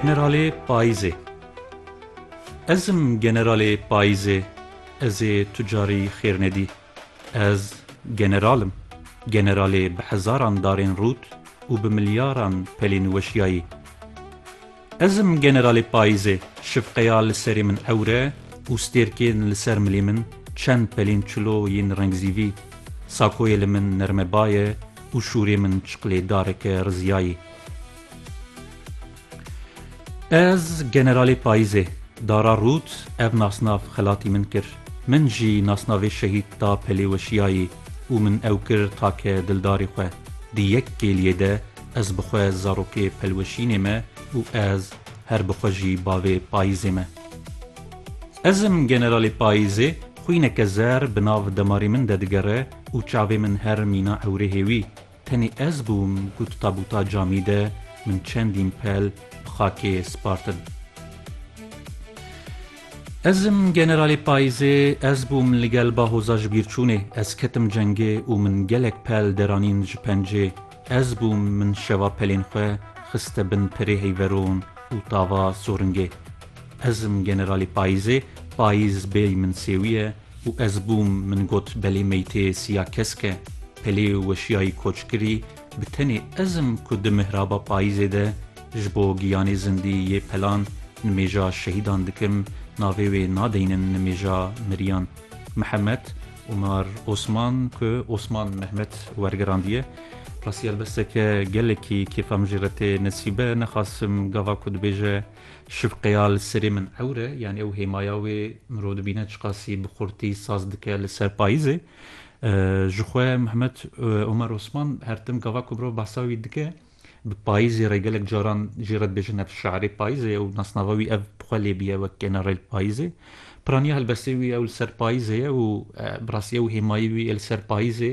Generalê payîzê Ez im generalê payîzê Ez ê tu carî xêr nedî Ez general im Generalê bi hezaran darên rût û bi milyaran pelên weşiyayî Ez im generalê payîzê Şifqeya li serê min ewre û stêrkên li ser milê min Çend pelên çilo yên rengzîvî Sakoyê li min nermebaye û şûrê min çiqlêdareke riziyayî. Ez generalê payîzê. Dara rût ev nasnav xelatî min kir. Min jî nasnavê şehîd da pelê weşiyayî û min ew kir take dildarê xwe. Di yek kêliyê de ez bi xwe zarokê pelweşînê me û ez her bi xwe jî bavê payîzê me. Ez im generalê payîzê, xwîneke zer bi nav demarê min de digere û çavê min her mîna ewrêhê wî. Tenê ez bûm ku di tabûta camî de min çendîn pel bi xakê spartin. Ez im generalê payîzê, ez bûm li gel bahoza ji bîr çûnê, ez ketim cengê û min gelek pel deranîn ji pencê, ez bûm min şeva pelên xwe xiste bin pirê heyveron û tava soringê. Ez im generalê payîzê, payîz bêyî min sêwî ye, Û ez bûm, min got belê meytê siya kesk e, pelê û weşiyayî koç kirî, bi tenê ez im ku di mihraba payîzê de ji bo giyanê zindî yê pelan nimêja şehîdan dikim, navê wê nadeynin nimêja miriyan. Mihemed Omar Osman ku Osman Mehmet wergirandiye, Rastî helbesteke gelekî kêfa min jê re tê nesîbe, nexasim gava ku dibêje, Şifqeya li serê min ewr e, yanî ew hêmaya wê mirov dibîne çiqasî bi xurtî saz dike li ser payîzê. Ji xwe Mehmet Omer Osman her tim gava ku mirov behsa wî dike, bi payîzê re gelek caran jî re dibêje Nefs şairê payîzê ye û nasnava wî ev bi xwe lê bûye wek generêl payîzê. Piraniya helbestê wî ew li ser payîzê ye û bi rastî ew hêmayî wî yê li ser payîzê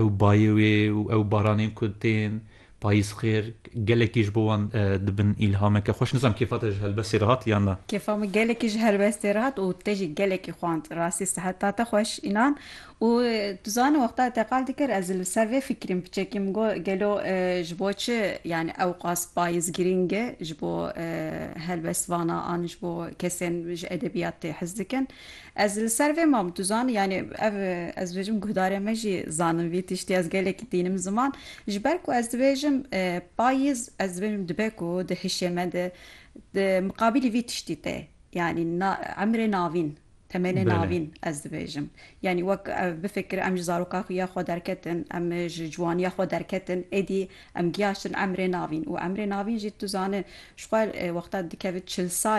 Ew bayê wê û ew baranên ku tên, payîz xêr, gelekî ji bo wan dibin îlhameke xweş. Nizam kêfa te ji helbestê re hat yan na? Kêfa min gelekî ji helbestê re hat û te jî gelekî xwend. Rastî siheta te xweş înan. Û tu zanî wexta teqal dikir ez li ser vê fikirîm piçekî min got gelo ji bo çi yanî ewqas payîz girîng e ji bo helbestvana an ji bo kesên ji edebiyat tê hez dikin. Ez li ser vê mam duzan yanî ev ez dibêjim guhdarê me jî zanin vî tiştî ez gelekî tînim ziman ji ber ku ez dibêjim payîz ez dibêjim dibe ku di hişê me de di miqabîlî vî tiştî tê yanî na emrê navîn temenê navîn ez dibêjim yanî wek ev bifikir em ji zaroka xwe ya xwe derketin em ji ciwaniya xwe derketin êdî em giyaştin emrê navîn û emrê navîn jî tu zane ji xwe wexta dikevit çil sal